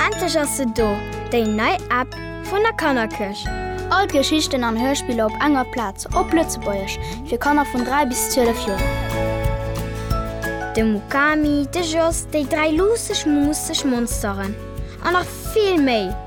Endlech ass se do, déi nei App vun der Kannerkëscht! All d'Geschichten an Hörspiller op enger Plaz, op Lëtzebuergesch, fir Kanner vun 3 bis 12 Joer. De Mukami, de Jos, déi dräi luusseg, muusseg Monsteren an nach vill méi!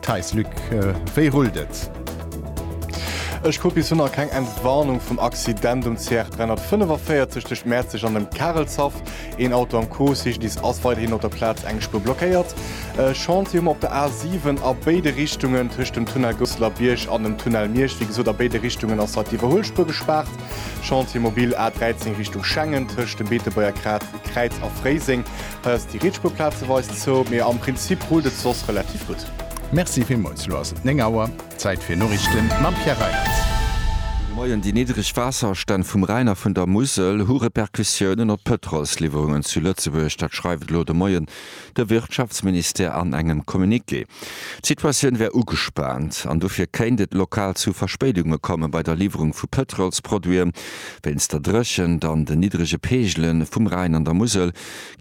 Theis, Luc, wéi rullt et? Ech kuck, bis hunner keng Entwarnung vum Accident um CR 345 tëscht Mäerzeg an dem Karelshaff. Een Auto am Cocyclist ass weiderhin op der Plaz eng Spuer blockéiert. Chantier hu mer op der A 7 a béide Richtungen tëscht dem Tunnel Gousseler Bierg an dem Tunnel Miersch. Wéi gesot, a béide Richtungen ass hei d'Iwwerhuelspuer gespaart. Chantier mobil A 13 Richtung Schengen tëscht dem Beetebuerger Kräiz a Fréiseng Heiass déi Rietspuer plazeweis zou, mee am Prinzip rullt et soss relativ gutt. Merci villmols, elo ass et 9 Auer, Zäit fir Noriichten mam Pierre Reinertz. Moien, Déi niddreg Waasserstänn vum Rhäin a vun der Musel hu Repercussiounen op d'Pëtrolsliwwerungen zu Lëtzebuerg. Dat schreift elo de Moien de Wirtschaftsministère an engem Communiqué. D'Situatioun wär ugespaant an dofir kéint et lokal zu Verspéidunge komme bei der Liwwerung vu Pëtrolsproduiten. Wéinst der Dréchent an den niddrege Peegele vum Rhäin an der Musel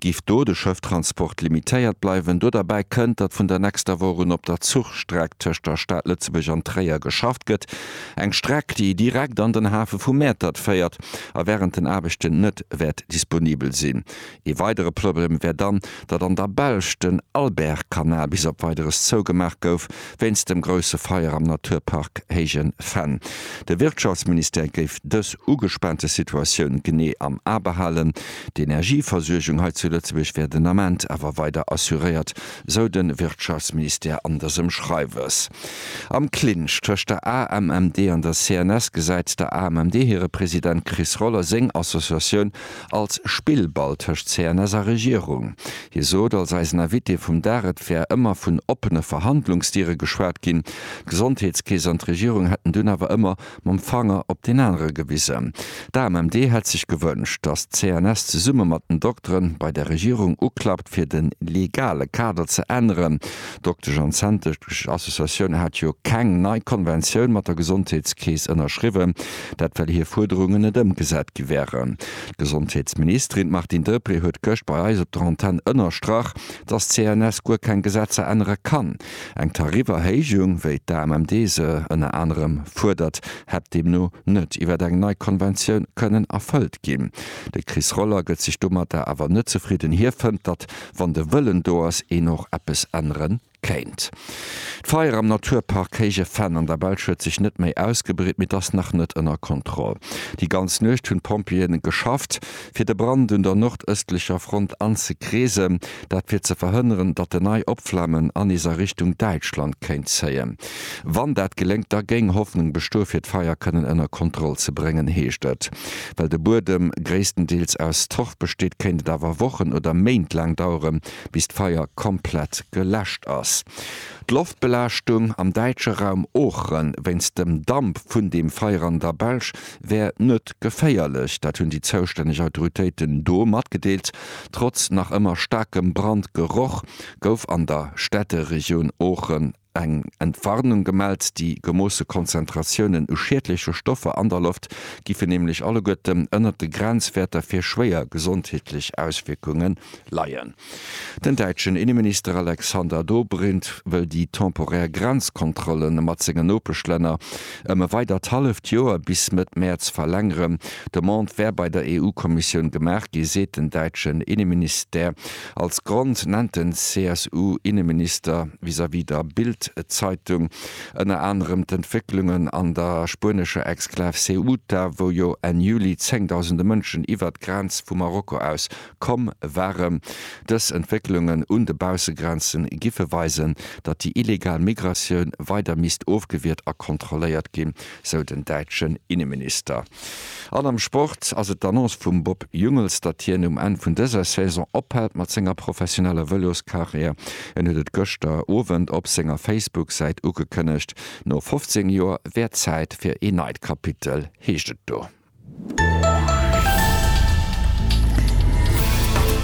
Giff do de Schëfftransport limitéiert bleiwen? Do derbäi kënnt, datt vun der nächster Woch un op der Zuchstreck tëscht der Stad Lëtzebuerg an Tréier geschafft gëtt. Eng Streck, déi direkt an den Hafe vu Mäertert féiert a wärend den Aarbechten net wäert disponibel sinn. Ee weidere Problem wär dann, datt an der Belsch den Albert-Kanal bis op Weideres zougemaach gouf wéinst dem grousse Feier am Naturpark Héijen Fenn. De Wirtschaftsministère géif dës ugespaante Situatioun genee am A behalen. D'Energieversuergung hei zu Lëtzebuerg wär den Ament awer weider assuréiert, sou de Wirtschaftsministère an dësem Schreiwes. Am Clinch tëscht der AMMD an der CNS gesäit der AMMD hire President Chris Roller seng Associatioun als Spillball tëscht CNS a Regierung. Hie sot als eisen Invité vum Dag, et wär ëmmer vun oppene Verhandlungsdiere geschwat ginn, d'Gesondheetskeess an d'Regierung hätten dunn awer ëmmer mam Fanger op deen anere gewisen. D'AMMD hätt sech gewënscht, datt d'CNS zesumme mat den Dokteren bei der Regierung uklappt, fir de legale Kader ze änneren. D'Doktesch an Zänntesch Associatioun hat jo keng nei Konventioun mat der Gesondheetskeess ënnerschriwwen, dat well hir Fuerderungen net ëmgesat gi wären. D'Gesondheetsministerin Martine Deprez huet gëscht bei eis op der Antenn ënnerstrach, datt d'CNS guer keng Gesetzer ännere kann. Eng Tariferhéijung, wéi d'AMMD se ënner anerem fuerdert, hätt deemno net iwwer eng nei Konventioun kënnen erfëllt ginn. De Chris Roller gëtt sech domatter awer net zefridden. Hie fënnt, datt, wann de Wëllen do ass, een och eppes ännere kéint. D'Feier am Naturpark Héije Venn an der Belsch huet sech net méi ausgebreet, mee et ass nach net ënner Kontroll. Déi ganz Nuecht hunn d'Pompjeeë geschafft, fir de Brand un der nordëstlecher Front anzekreesen. dat fir ze verhënneren, datt en nei Opflammen an is a Richtung Däitschland kéint zéien. Wann dat geléngt, da géing Hoffnung bestoe fir d'Feier kënnen ënner Kontroll ze bréngen, heescht et. Well de Buedem gréisstendeels aus Torf besteet, kéint et awer Wochen oder Méint laang dauere bis d'Feier komplett geläscht ass. D'Loftbelaaschtung am däitsche Raum Oochre wéinst dem Damp vun dem Feier an der Belsch wär net geféierlech. Dat hunn déi zoustänneg Autoritéiten do matgedeelt. Trotz nach ëmmer staarkem Brandgeroch gouf an der Städteregioun Oochen eng Entwarnung gemellt. Déi gemoosse Konzentratiounen u schiedleche Stoffer an der Loft giffen nämlech alleguerten ënnert de Grenzwäerter fir schwéier gesondheetlech Auswierkunge leien. Den däitschen Inneminister Alexander Dobrindt wëll déi temporär Grenzkontrollen mat senge Nopeschlänner, ëm e weidert halleft Joer, bis Mëtt Mäerz, verlängeren. D'Demande wär bei der EU-Kommissioun gemaach gi, seet den däitschen Inneministère. Als Grond nennt den CSU-Inneminister vis-à-vis der Bild-Zeitung ënner anerem d'Entwécklungen an der spuenescher Exklav Ceuta, wou jo Enn Juli zéngdausende Mënschen iwwert d'Grenz vu Marokko aus komm waren. Dës Entwécklungen un de Baussegrenze giffe weisen, datt déi illegal Migratioun weider misst ofgewiert a kontrolléiert ginn, sou den däitschen Inneminister. An am Sport ass et d'Annonce vum Bob Jungels, datt hien um Enn vun dëser Saison ophält mat senger professioneller Vëloskarriär. En huet et gëschter Owend op senger Facebook-Säit ugekënnegt. No 15 Joer wär Zäit fir ee neit Kapitel, heescht et do.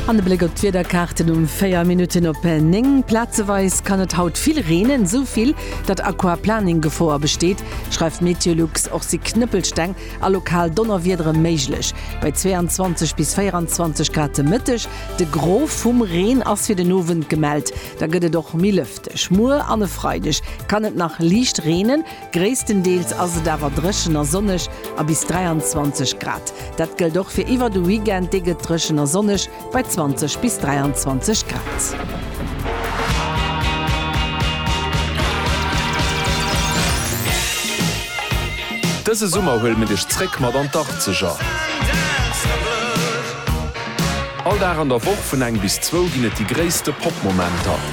An e Bléck op d'Wiederkaarten um 4 Minutten op 9. Plazeweis kann et haut vill reenen, esou vill, datt Aquaplaning-Gefoer besteet, schreift Meteolux. Och si Knëppelsteng a lokal Donnerwiedere méiglech, bei 22 bis 24 Grad de Mëtteg. De Gros vum Reen ass fir den Owend gemellt, da gëtt et och méi lëfteg. Muer an e Freideg kann et nach liicht reenen. Gréisstendeels ass et awer dréchen a sonneg a bis 23 Grad. Dat gëllt och fir iwwer de Weekend, dee gëtt dréchen a sonneg bei 20 bis 23 Grad. Dëse Summer huele mir dech zréck mat an d'Arkzeger. All Dag an der Woch vun eng bis zwou ginn et déi gréisste Pop-Momenter.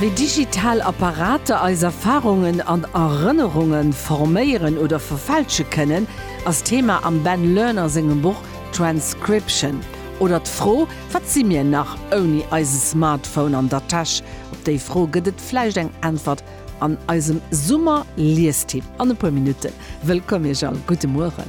Wéi digital Apparater eis Erfarungen an Erënnerunge forméieren oder verfälsche kënnen, ass Thema am Ben Lerner sengem Buch Transcription. Oder d'Fro, Wat si mir nach ouni eise Smartphone an der Täsch? Op déi Fro gëtt et vläicht eng Äntwert an eisem Summer-Liestipp an e puer Minutten. Wëllkomm Iech all, gudde Mueren.